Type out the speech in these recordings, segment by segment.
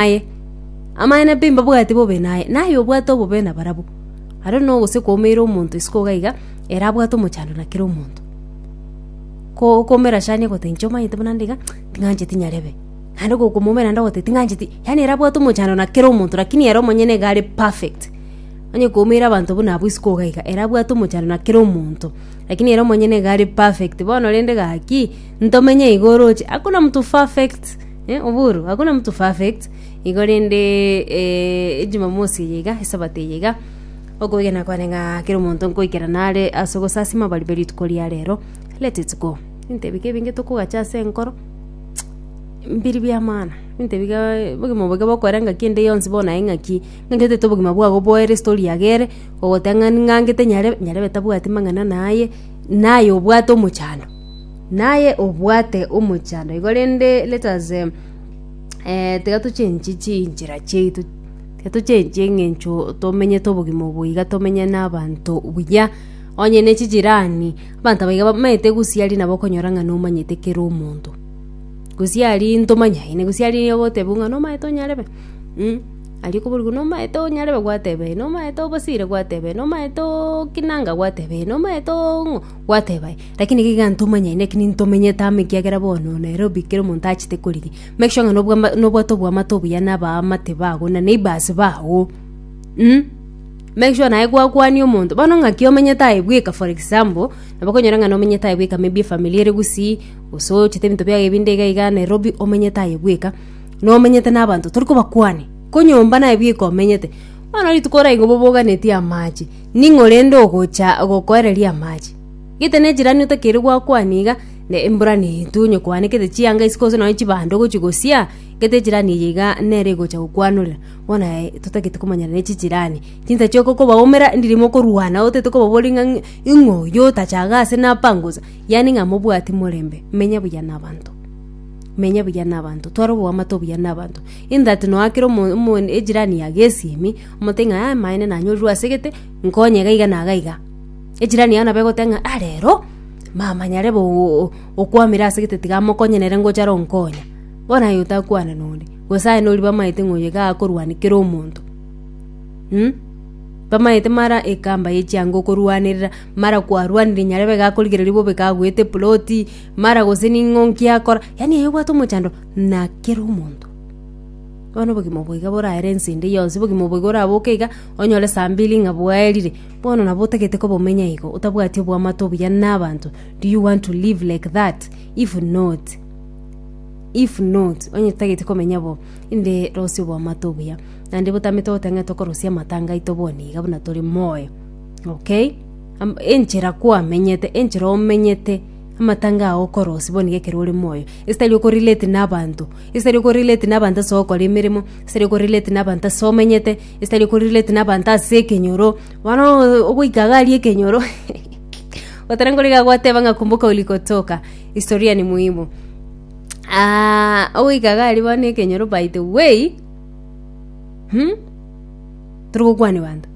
naye. Amang'ana pi mbabwati bobe naye, na aye obwate obobe nabarabwo. Ario na ogose kwaumeire omonto isiko iga iga, ere abwate omochando na kera omonto. Ko okoumera Shania ogoteba inche omanyete buna nde iga, ting'ancheti nyarebe. Naende gokomoumera naende ogoteba ting'ancheti, yaani ere abwate omochando na kera omonto lakini ere omonyene iga are perfect. Onye kwaumeire abanto buna abwo isiko iga iga, ere abwate omochando na kera omonto, lakini ere omonyene iga are perfect. Bono rende gaki, ntomenye iga oroche, hakuna mtu perfect. Eh, oboru, agwo namoto perfect igo rende eh, ejumamosi eye iga esabato eye iga okoigena kwane ng'a kera omonto nkoikera nare ase ogosasima abari be rituko ria rero let it go ebinto ebi ke ebinge tokogacha ase enkoro mbiri bia maana ebinto ebi ga obogima obo iga bokorera ngaki ende yonsi bono naye ngaki ng'aki otagete obogima bwago boere story ya gere ogoteba ng'a ning'angete nyare nyarebe tabwati mang'ana naye naye obwate omochando Naye obwate omochando igo, rende let us tiga tochenchi chinchera chiaito, tiga tochenchi eng'encho tomenyete obogima obo iga tomenye na abanto buya. Onye ne chijirani, abanto aba iga bamanyete gosiaria nabo okonyora ng'a nomanyete kera omonto. Gosiaria ntomanya aye, gosiaria nigo ogotebiwa ng'a nomanyete onyarebe? Mh, aria okoboria nomanyete onyarebe? Gwateba ee, nomanyete obosire? Gwateba ee, nomanyete ookinanga? Gwateba ee, nomanyete oo ng'o? Gwateba ee. Lakini iga igantuma nyine naki nintomenyete amo ekiagera bono Nairobi kera omonto achete korigia make sure ng'a nobwa nobwate oboamate obuya na abaamate bago na neighbours bago mm make sure naye gwakwania omonto bono ng'aki omenyete aye bweka for example nabo okonyora ng'a nomenyete aye bweka maybe efamiri ere gusii gose ochete ebinto biaye ebinde iga iga Nairobi omenyete aye bweka nomenyete na abanto tori kobakwania ko nyomba naye bweka omenyete bono rituko oraigwe boboganetie amache ning'o rende ogocha gokoereria amache. Gete nechirani otakiri gwakwania iga, na embura neetwe onye kwaanekete chianga isiko gose nonye chibando ogochia gosia, gete echirani eye iga nere egocha gokwanorera. Bono aye totagete komanyana ne chichirani. Chinsa chiao kokobaumera ndiri mokorwana otagete kobaboria ng'a ing'o oyo otachaga ase napangusa, yaani ng'a mobwati morembe, menya buya na abanto. Menya buya na abanto, twara oboamate obuya na abanto in that nonya kera omo omo echirani yago esiemi, omotebi ng'a aye maene nanyorirwe ase gete, nkonye iga iga na iga iga. Ejirani yao nabo egoteba ng'a, Ah rero, mama nyare bo- o- o- okwamire ase gete tiga amokonye nere ngocha are onkonya. Bono aye otakwane nonde, gose aye nori bamaete ng'a oyo iga akorwania kera omonto. Mh, bamaete mara ekamba ye chianga okorwanerera, mara kwarwanirie nyarebe iga akorigereria bobe iga agoete eploti, mara gose ning'o nki akora, yaani aye obwate omochando na kera omonto. Bono obogima obo iga borare ense ende yonsi, obogima obo iga oraboke iga, onyore saa mbili ng'a bwaerire. Bono nabo otagete koba omenya igo, otabwati oboamate obuya nabanto, do you want to live like that? If not, if not, onye totageti komenya bo, inde rosia oboamate obuya. Naende botamete goteeba ng'a tokorosia amatanga aito bono iga buna tore moyo. Okay? Am- enchera kwamenyete, enchera omenyete, amatanga ao okorosia bono iga ekero ore moyo. Esitari oko relate nabanto, esitari oko relate nabanto ase ogokora emeremo, esitari oko relate nabanto ase omenyete, Esitari okorelate nabanto ase ekenyoro bono ogoika iga aria ekenyoro gotara nkoriga agoteba ng'a kumbuka ulikotoka historia ni muhimu Ah, ogoika iga aria bono ekenyoro by the way hmm? tari gokwania banto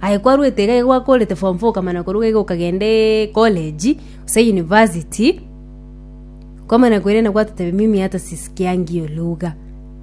aye kwarwete iga igo gwakorete form four okamana koruga iga okagende college gose university kwamana koirana gwatotebi mimi hata sisikiangi hiyo lugha.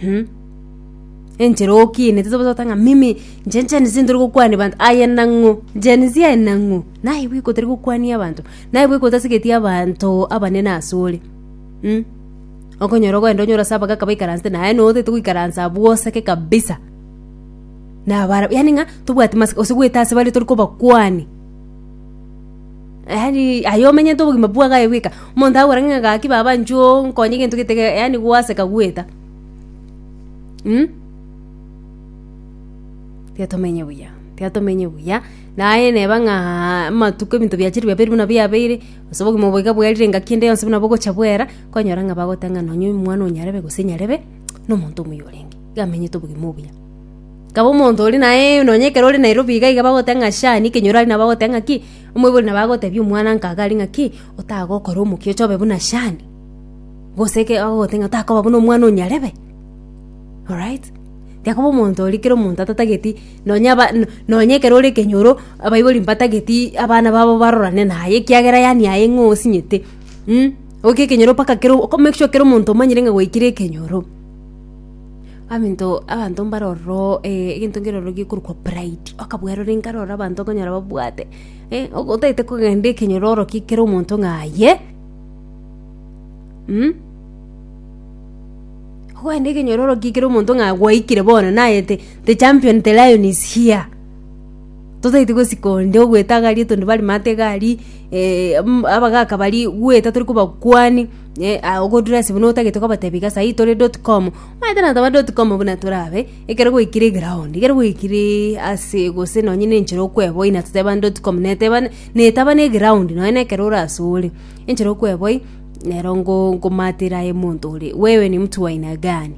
Hmm? enchera okienete toba totanga mimi nche njenisi ntori gokwania abanto aye nang'o njenisi aye nang'o naye bweka otari gokwania abanto naye bweka otasigeti abanto abanene ase ore hmm? okonyora ogoenda onyore ase abagaka baikaransete naye noo otagete goikaransa abwo oseke kabisa nabare yaani ng'a tobwati mask gose goeta ase bare tori kobakwania. yaani aye omenyete obogima bwagaye aye bweka omonto agokora ng'a gaki baba nchoo nkonye egento gete ge- yaani gwaseka gweta mm? tiga tomenye buya tiga tomenye buya naye neba ng'aa amatuko ebinto biachire biabeire buna biabeire gose obogima obo iga bwerire engaki ende yonsi buna bogocha bwera kwanyora ng'a bagoteba ng'a nonye omwana oyio nyarebe gose nyarebe na omonto omuya orenge iga amenyete obogima obuya. Kaba omonto ore naye nonya ekero ore Nairobi iga iga bagoteba ng'a sha niki enyoro aria nabo bagoteba ng'aki omoibori nabo agotebia omwananka iga aria ng'aki otagokora omokia ocha obe buna shan gose eke agogotebi ng'a otakoba buna omwana o nyarebe orait. Tiga koba omonto oria kera omonto atatageti nonya aba no- nonya ekero ore ekenyoro abaibori mbatageti abana babo barorane naye ekiagera yaani aye ng'o osinyete oke ekenyoro mpaka kero oko make sure kera omonto omanyire ng'a gwaikire ekenyoro. Abanto abanto mbare ororo egento nkere ororo gekorokwa pride, okabwaa rore inkare ororo abanto okonyora babwate otagete kogenda ekenyoro oro ki kera omonto ng'a aye mm ogende ekenyoro oro ki kera omonto ng'a gwaikire bono naye the champion the lion is here. Totaeti gosika onde ogweta agari etonde bare mate egari eh, mm, abagaka bari gweta tori kobakwani eh, ah, ogodress buna otagete kobatebi iga saii tore dot com omanyete na taba dot com buna torabe ekero gwaikire eground ekero gwaikireee ase gose nonye na enchera okweboi na toteba dot com neteba netaba na eground nonye na ekero orasore enchera okweboi nero ngo ngomatera aye monto ore wewe ni mtu wa aina gani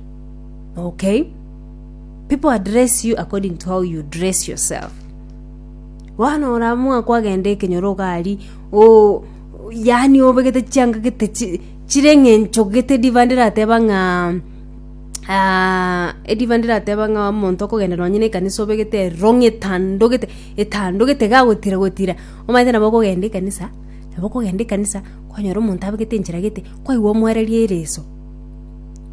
okay. People address you according to how you dress yourself. Bono oramwa kwagenda ekenyoro ogari o yani obegete chiangagete chi- chire ng'encho gete diva ndirateba ng'a ah, ediva ndirateba ng'a omonto okogenda nonye na ekanisa obegete erong'i etandogete etandogete iga gotira gotira omanyete nabo okogenda ekanisa nabo okogenda ekanisa kwanyora omonto abegete enchera gete kwaigwa omwereria ereso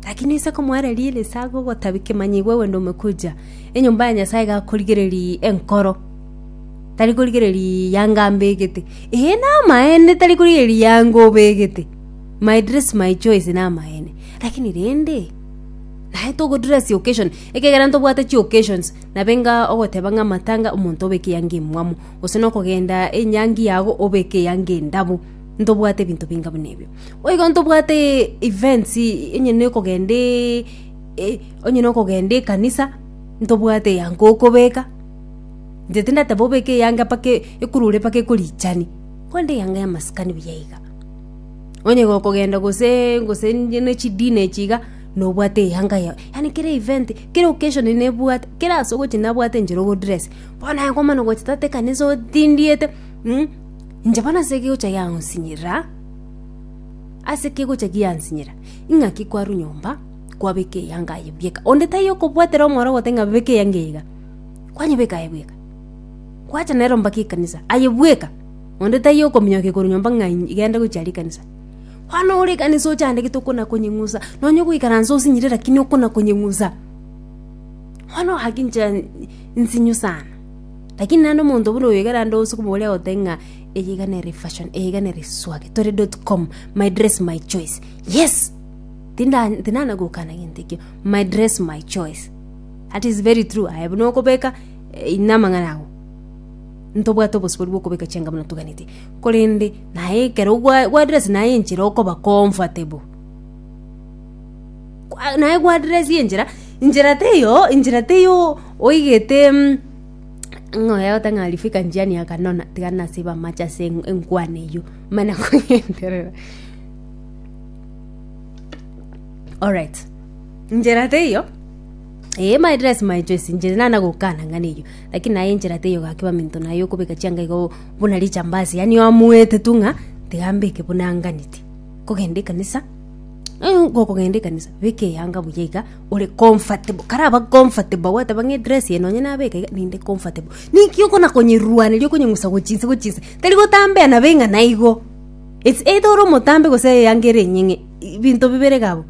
Gaki ninse komoereria ere esaga ogotabia kemanyigwe ogende ome kochia enyomba ya Nyasaye gakorigereria enkoro, tari korigereria yanga ambegete. Ee, namaene tari korigereria yanga obegete. My dress, my choice namaene. Lakini rende, naye togodress occasion, ekegera ntobwate chioccasions, nabenga ogoteba ng'a amatanga omonto obeke eyanga emwamu, gose nokogenda enyangi yago obeke eyanga endabu, ntobwate ebinto binga buna ebio. Boigo ntobwate events onye nokogenda onye nokogenda ekanisa ntobwate eyango okobeka inche tindateba obeke eyange mpaka ekurure mpaka ekorichani korende eyanga yamasikani buya iga onye gokogenda gose gose ne chidina echi iga nobwate eyanga yago yaani kera event kera occasion nebwate kera ase ogochia nabwate inche rogodress bono naye komana ogochia tata ekanisa otindiete inche bono ase egocha yang'osinyerera. Ase ki gocha giansinyera? Ing'aki kwarwa nyomba kwabeka eyanga aye buya eka. Onde taiyo okobwatera omoro ogote ng'a beka eyanga eye iga. Kwanyebeka aye bweka. Kwacha nero mpaka ekanisa aye bweka. Onde taiyo okominyoka korwa nyomba ng'a genda gochia aria ekanisa. Bono ore ekanisa ochandegete okona konyeng'usa, nonya ogoikaransa osinyire lakini okona konyeng'usa. Bono gaki inche nsinyu sana. Lakini naende omonto buna oyo ekero aande ase okomoboria agote ng'a. Eyeiga nere fashion, eyeiga nere swag. Tore dot com, my dress my choice. Yes! Tinda tinana gokana gento ekio. My dress my choice. That is very true. Aye buna okobeka eh, ina amang'ana ago. Ntobwate obosibori bwa okobeka chianga buna tuganete. Korende naye ekero gwa gwa dress naye enchera okoba comfortable. Kwa- Naye gwa dress enchera, enchera teyo, enchera teyo oigete mm, Ng'a oye agote ng'a rifika njiani akanona, tiga nasiba amache ase en- enkwana eyio, mana kogenderera. Alright, enchera teiyo eh my dress my choice inche nana gokana ng'a neiyo, lakini naye enchera teiyo gaki baminto naye okobeka chianga igo buna richambasi yaani oamuete tu ng'a tiga mbeke buna anganeti. Kogenda ekanisa, eh gokogenda ekanisa, beka eyanga buya iga. ore comfortable karaba comfortable gwateba ng'a edress eye nonye nabeka iga ninde comfortable ninki okona konyeruaneria okonyeng'usa gochinse gochinse tari gotambea nabo eng'ana igo it's either ore omotambe gose eyango ere enyeng'e i- binto bibere iga abwo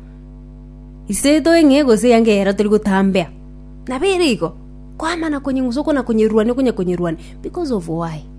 it's either eng'ee gose eyango eyero tori gotambea nabo ere igo kwamana konyeng'usa okona konyeruania okonya konyeruania because of why.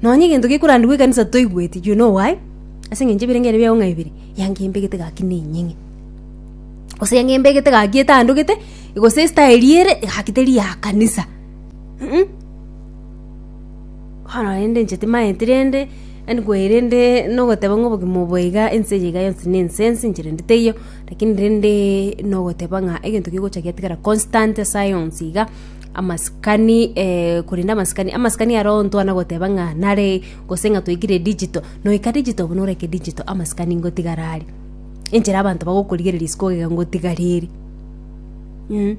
Nonya egento gekorandigwa ekanisa toigweti, do you know why? Ase engencho ebirengererio biago ng'a bibere, yanga embegete gaki nenyeng'e. Gose yanga embegete gaki etandogete, gose estaeli ere gaki teri ya kanisa. Mm-mm. Bono rende inche timaeti rende, yaani kwaye rende nogoteba ng'a obogima obo iga ense eye iga yonsi na ense ense inche rende teiyo, lakini rende nogoteba ng'a egento kegocha getigara constant ase ayonsi iga. amasikani eh, korende amasikani amasikani aro ntwana goteba ng'a nare gose ng'a twaikire digital noika digital buna oreke digital amasikani ngotigara are enchera abanto bagokorigereria isiko ogega ngotigareri mm.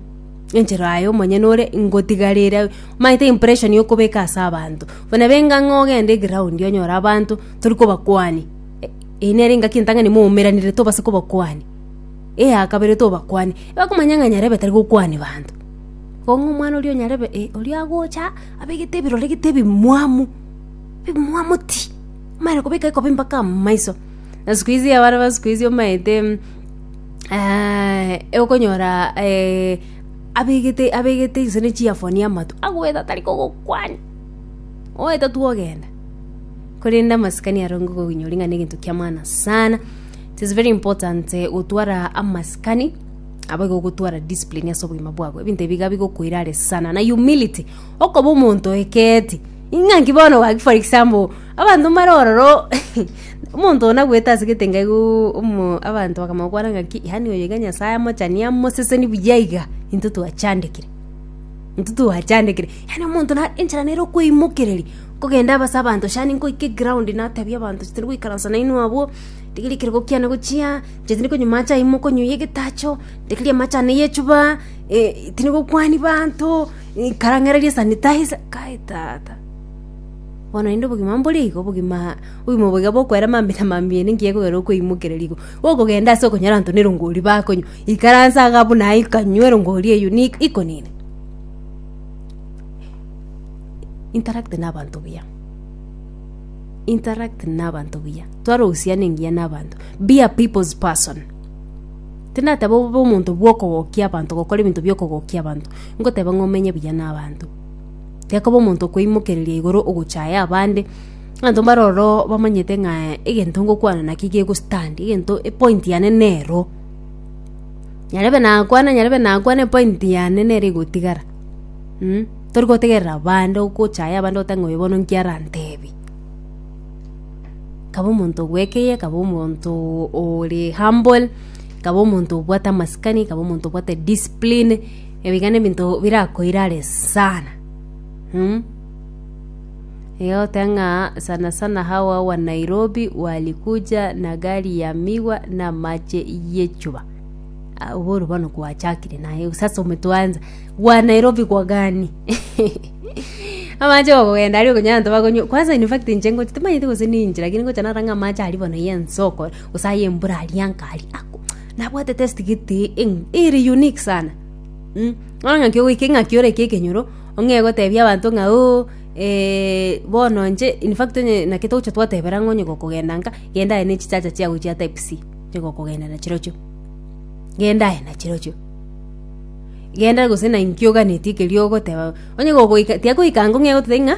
enchera aye omonyene ore ngotigarere maete impression yokobeka ase abanto buna benga ng'a ogende eground onyore abanto tori kobakwania E- eye nere engaki entang'ani moumeranire tobase kobakwania eyakabere tobakwania bakomanya ng'a nyarebe tari gokwania banto Kong'u omwana oria o nyarebe oria agocha abegete ebirore gete ebimwamu, ebimwamu ti, amanyare kobeka ekobe mpaka amaiso. Na siku hizi abana ba siku hizi omanyete okonyora abegete abegete gose ne chiafoni amato, agoeta tari kogokwani, oeta tu ogenda. Korende amasikani aro nigo okobinyora ng'a ne egento kia maana sana, it is very important gotwara amasikani. Abo igo ogotwara discipline ase obogima bwabo, ebinto ebi iga bigokoira are sana, na humility, okoba omonto oekeeti. Ing'a nki bono gaki for example, abanto mbare ororo omonto one agoeta ase egetenga igooo omo abanto bakamokwana ng'aki yaani oyo iga Nyasaye amochani amoseseni buya iga, intwe twachandekire intwe twachandekire, yaani omonto na enchera nere okoimokereria, nkogenda aba ase abanto shani nkoika eground natebia abanto titari goikaransa nainwe abwo, rigerio ekerogo kiane gochia. Gose ningokonywa amache ayio mokonyuia egetacho, rigereria amache ane y'echuba, tinigokwania baanto, ikara ng'ereria sanitizer. Kai tata, bono naende obogima mbore igo, obogima obogima obo iga bokoera mambia na mambia ere ngiya ekogera okoimokereria igo. Gokogenda ase okonyora abanto na erongori bakonywa, ikaransa iga buna aye ikanywa erongori eyio ni iko nini. Interact na abanto buya. interact nabanto buya tware ohusiana engiya nabanto be a people's person tindateba obe omonto bwokogokia abanto gokora ebinto biokogokia abanto ngoteba ng'a omenye buya nabanto tiga koba omonto okweimokereria igoro ogochaya abande abanto mbare ororo bamanyete ng'a egento ngokwana naki gego stand egento epointi yane nero nyarebe nakwana nyarebe nakwana epointi yane nere egotigara. Tori gotegerera bande ogochaya abande oteba ng'a oyo bono nki arantebi. Kaba omonto obwekeye, kaba omonto ore humble, kaba omonto obwate amasikani, kaba omonto obwate discipline, ebio iga nebinto birakoira are sana. Iga ogoteba ng'a sana sana hawa wa Nairobi walikuja na gari ya miwa na amache y'echuba. Ah, oboro bono kwachakire naye gose ase ometwanza gwa nairobi gwa gani amache gokogenda ari okonyanto bakonyo kwanza in fact inche ngoche timanyete gose ninche lakini ngocha narang'a amache ari bono ya ensoko gose aye embura aria nkari ako nabwate test gete eng ere unique sana mm bono ng'aki ogoika eng'aki orenge ekenyoro ong'e gotebia abanto ng'a ooh eh bono inche in fact onye naki togocha twatebera ng'a onye gokogenda nka genda aye ne chichacha chiago chia type C. tiga okogenda na chirochio genda aye na chirochio genda gose na inki oganeti ekerio ogoteba onye gogoika tiga goika ango ng'e goteba ng'a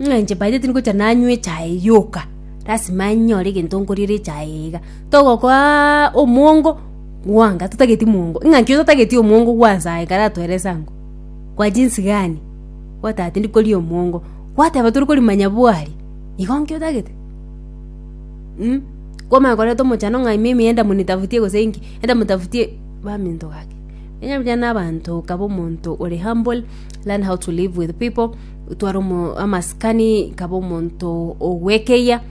ng'a inche by the way tingocha nanywa echae yoka lasima nyore egento nkoriere echae eye iga togokoaaa omwongo bwango totageti mwongo ng'a inki totageti omwongo bwa nyasaye ekero atwerese ango kwa jinsi gani gwateba tindi koria omwongo gwateba tori korimanya bwari igo inki otagete. Mh, komanya koreta omochando ng'a ime ime enda monitafutie gose inki, enda motafutie baminto gaki. Onye mbuya na abanto okaba omonto ore humble, learn how to live with people, otware omo amasikani kaba omonto ogwekeyia,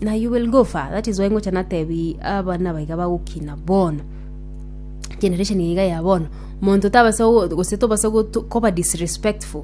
na you will go far, that is why ngocha natebi abana aba iga bagokina bono, generation eye iga ya bono, monto tabasa go gose tobasa gotu koba disrespectful.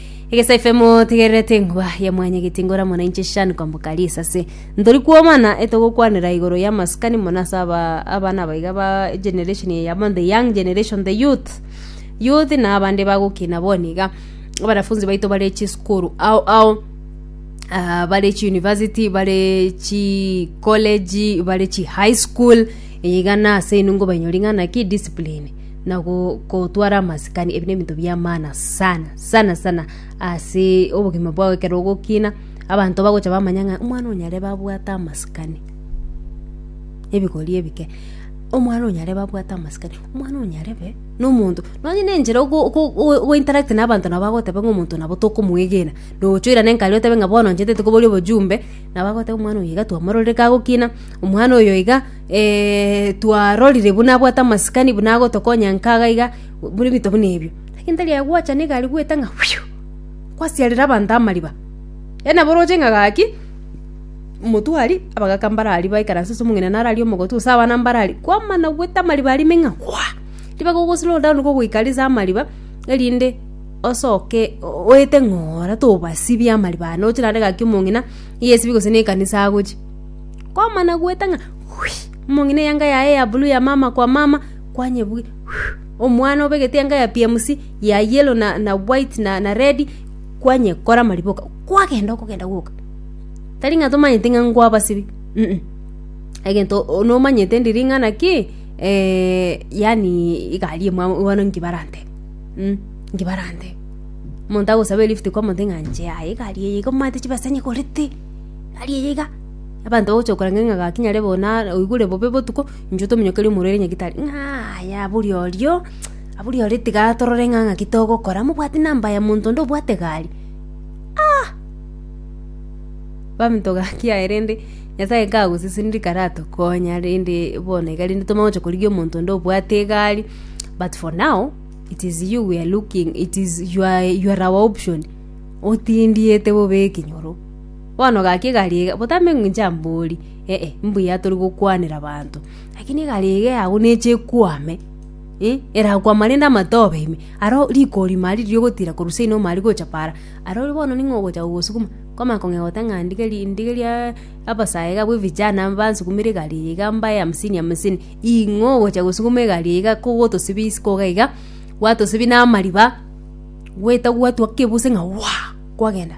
Egesaifemo tigererete engwa ya mwanyageti ngora mona inche shani kwamboka risase. Ntori kwomana etogokwanera igoro ya maskani mona ase aba abana abaiga ba generation ya yabo the young generation the youth. Youth na abande bagokina boni iga. Abanafunzi baito bare chiskuru ao ao uh, bare chi university bare chi college bare chi high school iga nase inwe ngobanyori ng'ana ki discipline na gotwara amasikani, ebi nebinto biamana sana sana sana ase obogima bwao ekero ogokina, abanto bagocha bamanya ng'a omwana o nyarebe abwate amasikani, ebigori ebike, omwana o nyarebe abwate amasikani, omwana o nyarebe na omonto, nonya na enchera ogo ogo ogo interact na abanto nabo agoteba ng'a omonto nabo tokomoegena, nocha oirane nkare otebe ng'a bono inche ntete koboria obojumbe, nabo agoteba omwana oyo iga twamororire kagokina, omwana oyo iga. twarorire buna abwate amasikani buna agotokonya nkaga iga, buna ebinto buna ebio. Lakini tari aye gwachana egari goeta ng'a kwasiarera abanto amariba. Yaani nabo oroche ng'a gaki, omotwe aria, abagaka mbaro aria baikaranse ase omong'ina naro aria omogotwe gose abana mbaro aria, kwamana goeta amariba aria ime ng'a ribe gogo slow down igo ogoika ase amariba erinde osoke oete ng'a ore tobasibie amariba ane oche naende gaki omong'ina nigo esibi gose na ekanisa agochie. Kwamana goeta ng'a momong'ina eyanga yaye ya blue ya mama kwa mama kwanyebugia omwana obegete eyanga ya PMC ya yellow na white na red kwanyekora mariboka kwagenda okogenda gwoka tari ng'a tomanyete ng'a nkwabasibia um egento nomanyete ndiri ng'a naki yaani egari emwabo bono nki barantebe um nki barantebe omonto agosaba elift kwamoteba ng'a inche yaya egari eye iga omanyete chibesa nyegorete. Tari eye iga, abanto bagocha gokora ng'a gaki nyare bo na oigure bobe botuko, inchuo tominyokerie omorwre ere nyagitari, ng'a aye aburi orio, aburi orio tiga torore ng'a ng'aki togokora, mobwati namba ya monto onde obwate egari? Ah! Abanto gaki aye rende Nyasaye kagoseseniri karatokonya rende bono iga rende tomanye gocha korigia omonto onde obwate egari, but for now, it is you we are looking, it is you are our option, otindiete bobe ekenyoro. Bono gaki egari eye, botambe ng'a inche mbori, ee, mbuya tori gokwanera abanto. Lakini egari eye yabo neche ekwame, eh, erakwama rende amatobe ime, aro riko rima aria riria ogotira korwa seino ime aria gocha paara, arorio bono ning'o ogocha kogosukuma? Kwamanya kong'ea goteba ng'a ndigeri ndigeriaaa abasae iga bwe vijana mbansukumere egari eye iga mbae hamsini hamsini, ing'o ogocha gosukuma egari eye iga kogotosibia isiko iga iga, gwatosibia na amariba, gwetagwa gwatua kebuse ng'a waa! kwagenda.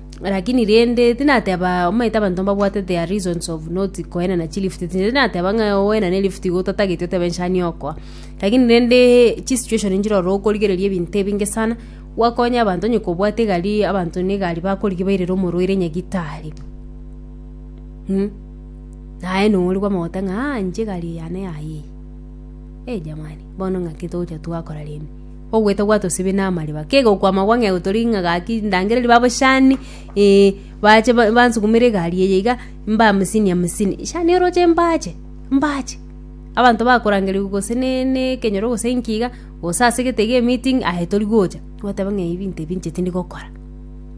Lakini rende tinateba omanyete abanto mbabwate their reasons of not koenana chilifuti tindi nateba ng'a oenane elifuti iga otatageti otebe inche ani okoa lakini rende chisituation nchire ororo okorigereria ebinto ebinge sana gwakonya abanto onye kobwate egari abanto ne egari bakorigia bairere omorwaire nyagitari mh naye nonya origwa omogote ng'a inche egari eye yane yayie eh jamani bono ng'aki togocha twakora rende. Ogweta gwatosibie namariba, kegokwama gwa ng'eu toria ng'a gaki ndangereria babochani, ee, bache ba- bansukumere egari eye iga, mbamisini amisini, shani oroche mbache, mbache. Abanto bakorangeria gose ne ne ekenyoro gose inki iga, gose ase egete iga emeeting, aye tori gocha, goteba ng'a ebi ebinto ebi inche tindi gokora,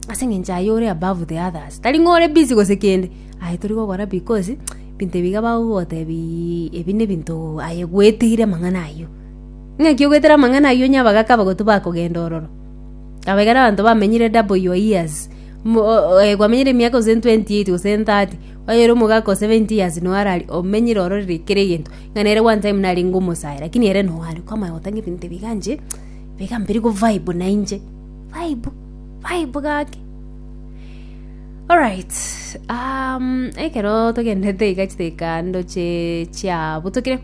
ase eng'encho aye ore above the others, tari ng'a ore busy gose kende, aye tori gokora because ebinto ebi iga bagogotebiiii ebi ne ebinto aye gwetigire amang'ana ayio. Naki ogoetera amang'ana ayio onye abagaaka abagotu bakogenda ororo, aba ekero abanto bamenyire double your years, mo- o- o- eh, kwamenyire emiaka gose 28 gose 30, onye ere omogaka o 70 years noo arari omenyire ororo ri- kera egento, ng'a nere one time narenge omosae lakini ere noo are kwama aye gotanga ebinto ebi igaa inche, ibi igaa mbiri ko vibe na inche, vibe vibe gaki. Alright, ekero togenderete iga chidakika ando chie chiabutukire.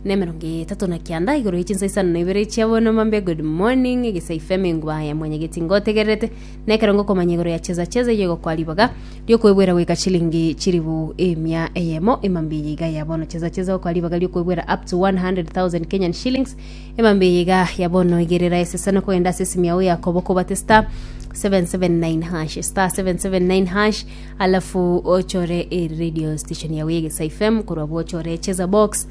na emerongo etato na kianda igoro ye chinsa isano na ibere chia bonomambe good morning egesai fm enguba ya mwanyageti ngotegererete na ekerongo komanya igoro ya cheza cheza iye gokoa ribaga riokwebwera goika chilingi chiribu emia eyemo emambe eye iga ya bono cheza cheza gokoa ribaga riokwebwera up to 100000 kenyan shillings emambe eye iga ya bono igerera esesano kogenda ase esimi yao yakobo kobate star 779 hash star 779 hash alafu ochore e radio station yawe egesa fm korwa bo ochore cheza box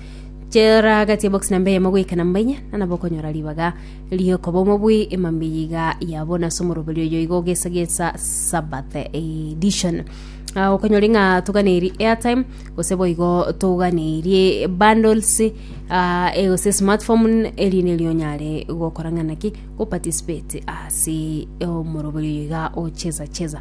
chera gati box namba eyemo goika namba inya nanabo okonyora ribaga riokoba omobui emambi yiga yabo nase omoroberi oyo igo ogesagesa sabbath edition Ah, okonyori ng'a toganeri airtime gose boigo toganeirie bundles ah, e gose smartphone erinde erio onyare gokora ng'a naki goparticipate ase omoroberi oyo iga ocheza cheza